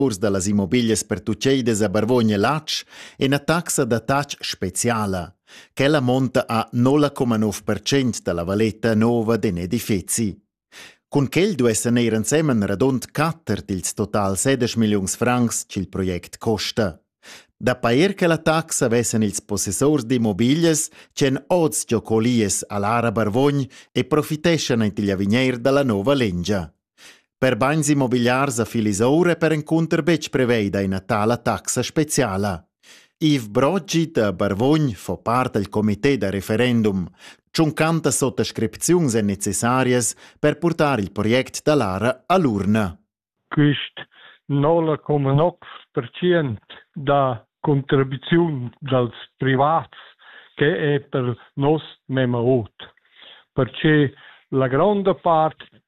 urs da las immobiglias pertucceidas a Barvogna Latsch e ina taxa da tatg speciala. Quella monta a 0,9% da la valeta nova d'in edifezi. Cun quel duessan eir ensemen radund quatter dils total 16 milliuns francs ch'il project costa. Da pair che la taxa vessen ils possessors d'immobiglias ch'en oz giocolies a Lara Barvogn e profiteschan ent igl avigneir dalla nova lingia. Per bagns immobiliars a Filisoura è perencunter betg preveida ina tala taxa speciala. Yves Broggi da Barvogn fa part dal comité da referendum. Tschuncantas sottascripziuns èn necessarias per purtar il project da Lara a l'urna. Quist 0,9% da contribuziun dals privats che è per nos mema ot. Perche la gronda part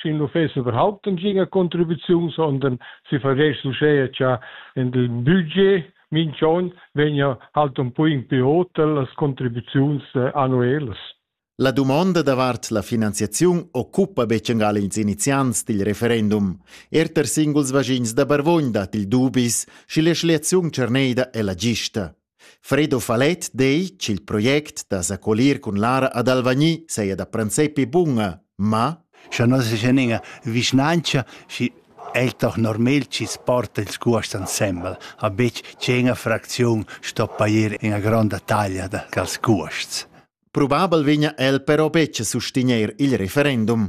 sin l'uffeci überhaupt ein giga contribuziun, sondern si vergess uschè cha in il budget minch'on vegna halt un po in più hotel las contribuziuns eh, annuelas. La dumonda davart la finanziaziun occupa beccengal ils iniziants dil referendum. Erter singuls vaschins da Barvogn dat il dubis, schi la schliaziun cerneida è la gista. Fredo Falet dei ch'il project da s'accolir cun Lara ad Alvagni saja da princepi bunga, ma Scha non es üna vischnanca, schi e'l toch normal chi's porta ils cuosts insembel, a betg che üna fracziun sto pajer üna gronda taglia da quels cuosts. Probabel vegna el però betg a sustegnair il referendum.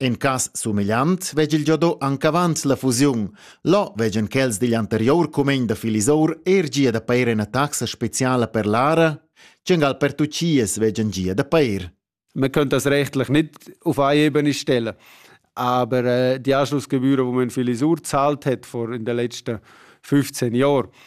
In cas sumegliant vegel giado anc avant la fusiun. Là veggan quels digl anterior cumegn da Filisour er gia da pair ina taxa speciala per l'ara, tschengal per tucias veggan gia da pair. Man könnte das rechtlich nicht auf eine Ebene stellen. Aber äh, die Anschlussgebühren, die man Filisur gezahlt hat vor in den letzten 15 Jahren,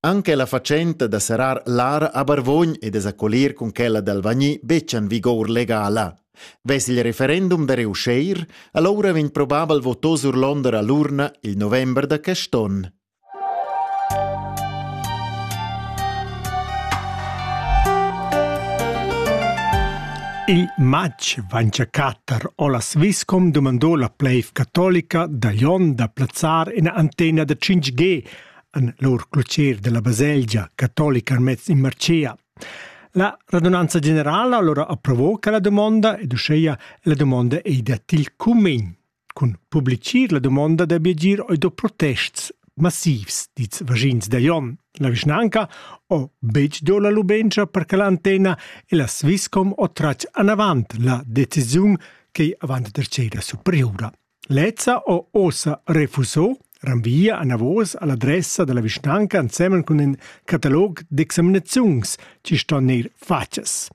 Anche la fatschenta da serrar l'ara a Barvogn e da s'accolir cun quella d'Alvagni betg en vigour legala. Vess il referendum da reussir, allora vegn probabel votò sur Londra l'urna il november da quest onn. Il matg vancia catter o la Swisscom dumandò la pleiv catolica da Lyon da plazzar ina antena da 5G en lur clocher della baselgia catolica mez in Marcea. La radunanza generala allora approvò quella domanda ed uscheia la domanda ei da til cumin. Cun publicir la domanda da biagir oi do protests massivs, diz vagins da Jon. La vischnanca o betg do la lubenza per che l'antena e la Swisscom o tracc anavant la decisiun che avant der cera superiura. Lezza ho uossa refuso ranvia anavos all'adressa da la vischnanca ensemen cun ün catalog d'examinaziuns chi ston gnir fatgas.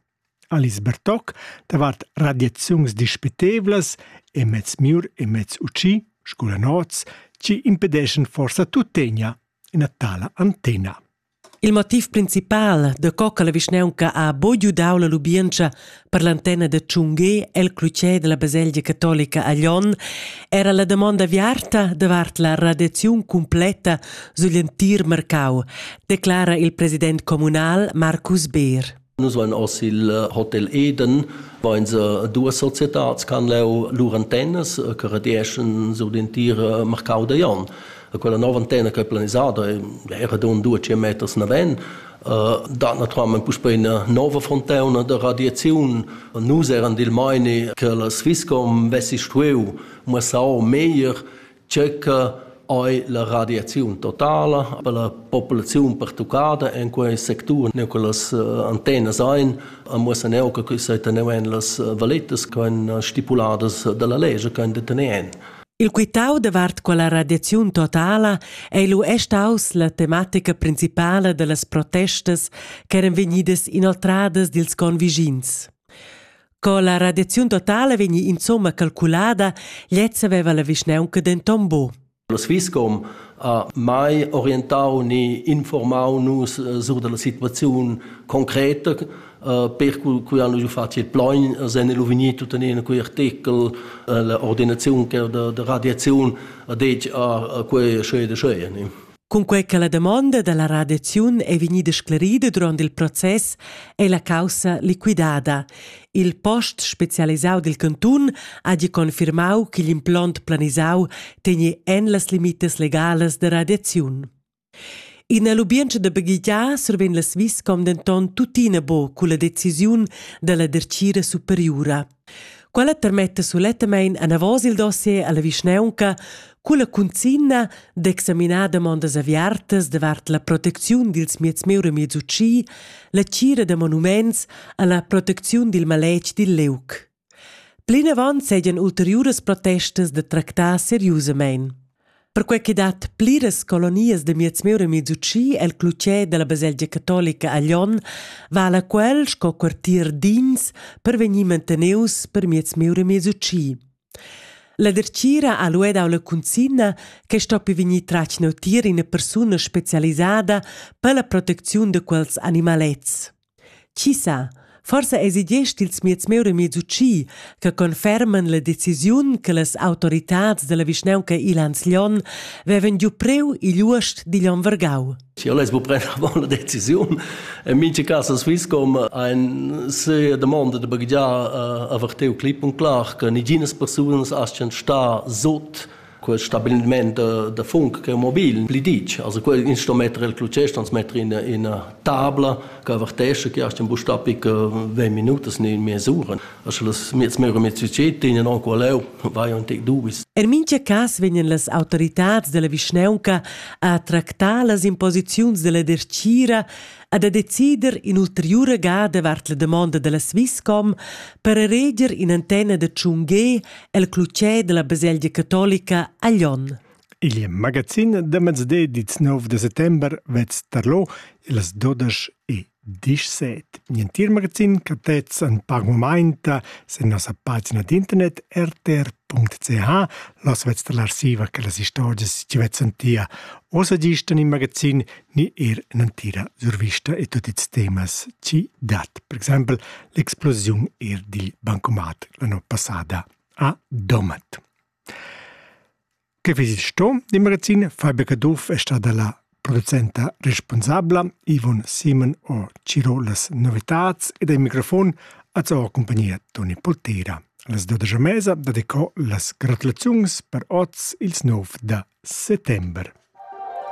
Alice Bertoc davart radiaziuns dispitevlas e mezz mür e mezz utschi, scoula nots, chi impedeschan forsa tuttegna ina tala antena. Il motiv principal, daco che la vischnaunca ha buca dau la lubientscha per l'antenna da tschungher el clutger dalla baselgia catolica a Lyon, era la damonda aviarta davart la radiaziun cumpleta sugl entir marcau, declara il president communal Marcus Beer. Nus vain hoz il Hotel Eden, vain se duas societats ch'han leu lur antennas che redeschan sur l'entira marcau da Jon. Quella nova antenna che è planisada era don duace meters naven, dat naturalmente puspei una nova fontauna de radiazione. Nus eran dil meini che la Swisscom vessi stueu muossau meglier Tschecca ei la radiaziun totala per la populaziun pertuccada en quei sectur. Neu che las eh, antennas ein, muossa neu che quei sei teneu en las eh, valettas che ein stipuladas dalla lege che ein detener en. Il quitau davart quella radiaziun totala ei lu è staus la tematica principala dallas protestas ch'eran vegnidas inoltradas dils convigins. Co la radiaziun totala vegni insomma calculada, lezza veva la vischneunca denton bu. La Swisscom ha mai orientau ni informau nus eh, sur dalla situaziun concreta eh, per cui hanno giù fatto il plogn sen el uvignit tuttenina quei artikel eh, la ordinazione che da, da radiazione ha detto a quei scede scede Cunquei che la damonda dalla radiaziun ei vegnida sclarida duront il process ei la caussa liquidada. Il post specialisau dil cantun hagi confirmau ch'igl implont planisau tegni en las limitas legalas da radiaziun. Ina lubientscha da baghegiar survegn la Swisscom denton tuttina buca culla decisiun dalla dertgira superiura. Quella termetta sulettamein anavos il dossier alla vischnaunca culla cunzina d'examinar demondas aviartas davart la protecziun dils mieds meura miez utschi, la tgira da monuments e la protecziun dil maletg dil liug. Plinavant seigien ulteriuras protestas da tractar seriusamein. Perquei che dat pliras colonias da miez mieur e miez utschi el clutger dalla baselgia catolica a Lyon vala quel sco quartier d'ins per vegnir manteneus per miez mieur e miez utschi. La dertgira ha lu dau la cunzina che stoppi vegnir tratg neutier ina persuna specialisada per la protecziun da quels animalets. Chi sa, forsa esi gest ils mieds miu remiez utschi che conferman la decisiun che las autoritads dalla vischnaunca igl Anslion vevan giu preu igl uost digl onn vargau. Io less bu prender avant la decisiun. In mincha cas a Swisscom ein se domanda de baghegiar uh, aver teu clip un clar che niginas persunas astgan star sot quel stabiliment da, da funk che è mobil pli ditg also quel instrument rel clutschest ans metter in ina tabla che avertesce che hast in bustapi che 20 minutas ne mesura also las miez meur miez succed in non qualeu vai on tec dubis Er mintga cas vegnan las autoritads della vischnaunca a tractar las imposiziuns della dertgira e da decider in'ulteriura gada vart la damonda della Swisscom per ereger in antena da Chungé el clutger della baselgia catolica a Lyon. Il magazin da mezde dits 9 de settembre vez tarlo las 12 e 17. Nientir magazin captez an pagmomenta se nossa pagina d'internet rtr.ch los vez dall'arsiva che las istorgias ci vezan tia. Osa gistan in magazin ni er ün'entira survista e tut ils temas chi dat. Per exempel l'explosiun er dil bancomat la no passada a Domat. Che visit sto di magazin Fabica Duff è stata la producenta responsabla Ivon Simon o Ciro las novitats ed ai microfon a sua compagnia Toni Poltera. Las 12 mesa dedicò las gratulaziuns per oz ils 9 da settembre.